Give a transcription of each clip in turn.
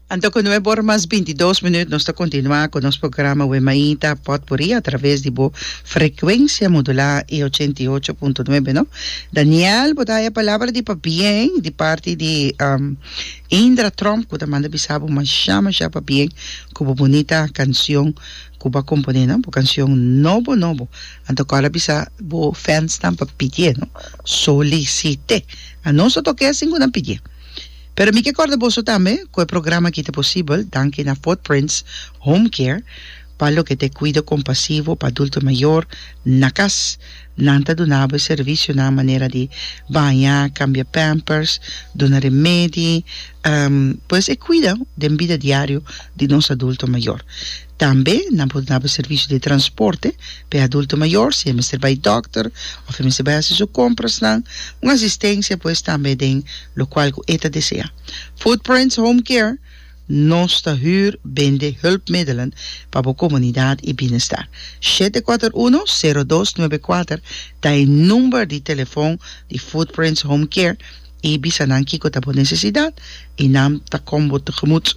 Anto ku nueb ora mas bintidos minüt nos ta kontinuá ku nos programa Wemainta Potpurrí atraves di bo frekuensia modulá i ochenta i ocho punto nuebe no. Daniel bo ta haya palabra di pabien di parti di Indra Tromp ku ta manda bisa bo mashá mashá pabien ku bo bunita kansion ku bo a komponé no, bo kansion nobo nobo. Anto kòrda bisa bo fans nan pa pidié no, solisité. A nos a toke sin cu nan pidi. Pero mi ke corda boso tambe cu e programa aki ta posibel danki na Footprints Home Care pa loke ta e cuido compasivo pa adulto mayor na cas. Nan ta duna bo e servicionan manera di baña, cambia pampers, duna remedi, pues e cuida den bida diario di nos adulto mayor. Tambe nan por daba servisio di transporte pa e adulto mayor si e mester bai dòkter òf e mester bai hasi su kòmprasnan. Un asistensia pues tambe den lokual ku e ta deseá. Footprints Home Care, Nos ta hür bende hùlpmiddelen pa bo komunidat i binestar. Shete kuater uno, sero dos nuebe kuater ta e number di telefòn di Footprints Home Care i bisa nan kiko ta bo nesesidat i nan ta kòm bo tegemut.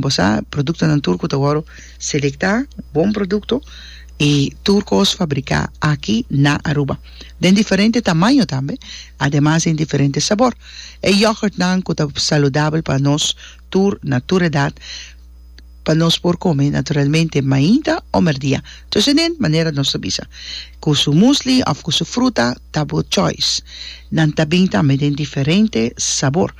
Bo sa, produktonan tur ku ta wòrdu selektá, bon produkto i tur kos fabriká aki na Aruba. Den diferente tamaño tambe, ademas den diferente sabor. E yògùrtnan ku ta saludabel pa nos tur na tur edat, pa nos por kome naturalmente mainta o mèrdia. Tusenen, manera nos ta bisa, ku su musli òf ku su fruta ta bo choice. Nan ta bin tambe den diferente sabor.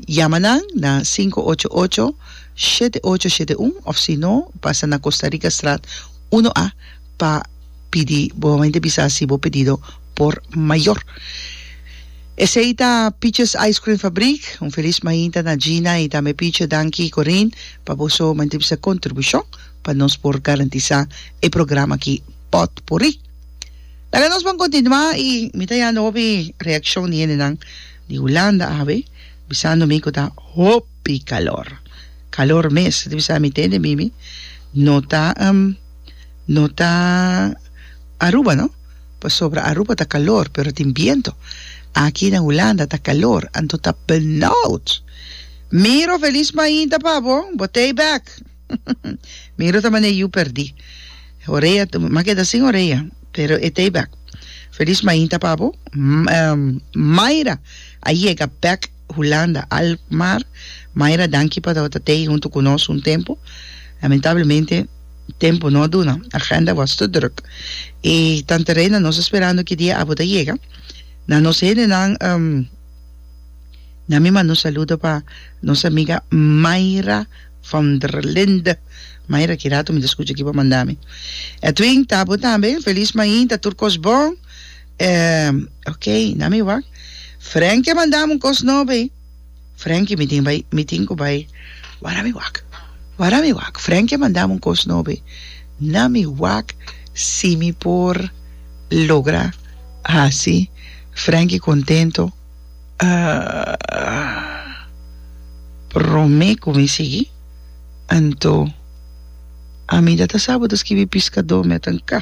Yama nan na sinku ocho ocho, shete ocho shete un òf si no pasa na Costa Rica Straat uno A pa pidi bo mamente bisa si bo pedido por mayor. Esei ta Piches Ice Cream Fabriek. Un felis mainta na Gina i tambe Piche, danki Corin pa boso mamente bisa kontribushon pa nos por garantisa e programa aki potpuri. Laga nos bon kontinuá i mi ta yanda hopi reakshon di hendenan. di Hulanda awe bisando mi ku ta hopi kalor kalor mes e ta bisa mi tende mimi no ta no ta Aruba no pasobra Aruba ta kalor pero tin biento aki na Hulanda ta kalor anto ta benaud miro felis mainta pa bo bo tei bek. Mi rota mane yu perdi. Orea, ma keda sin orea. Pero e tei bek. Feliz mainta pabo. M- em, Mayra a yega bek Hulanda, Alkmaar. Mayra, danki pa tabata tei huntu ku nos un tempu. Lamentablemente, tempu no a duna. Agenda was te druk. E tante Reina nos a sperando ki dia abo ta yega. Na nos hendenan, em, na mi mando saludo pa nos amiga Mayra. Van der Linde, Mayra ki rato mi ta skucha aki pa manda mi Edwin ta bo tambe felis mainta tur kos bon e ok na mi wak Frenkie a mandam un kos nobe Frenkie mi tin bai mi tin ku bai wara mi wak wara mi wak Frenkie a mandam un kos nobe na mi wak si mi por logra hasi Frenkie kontento. prome ku mi sigui anto ami da ta sa bo ta skibi piskadó mi a tanká.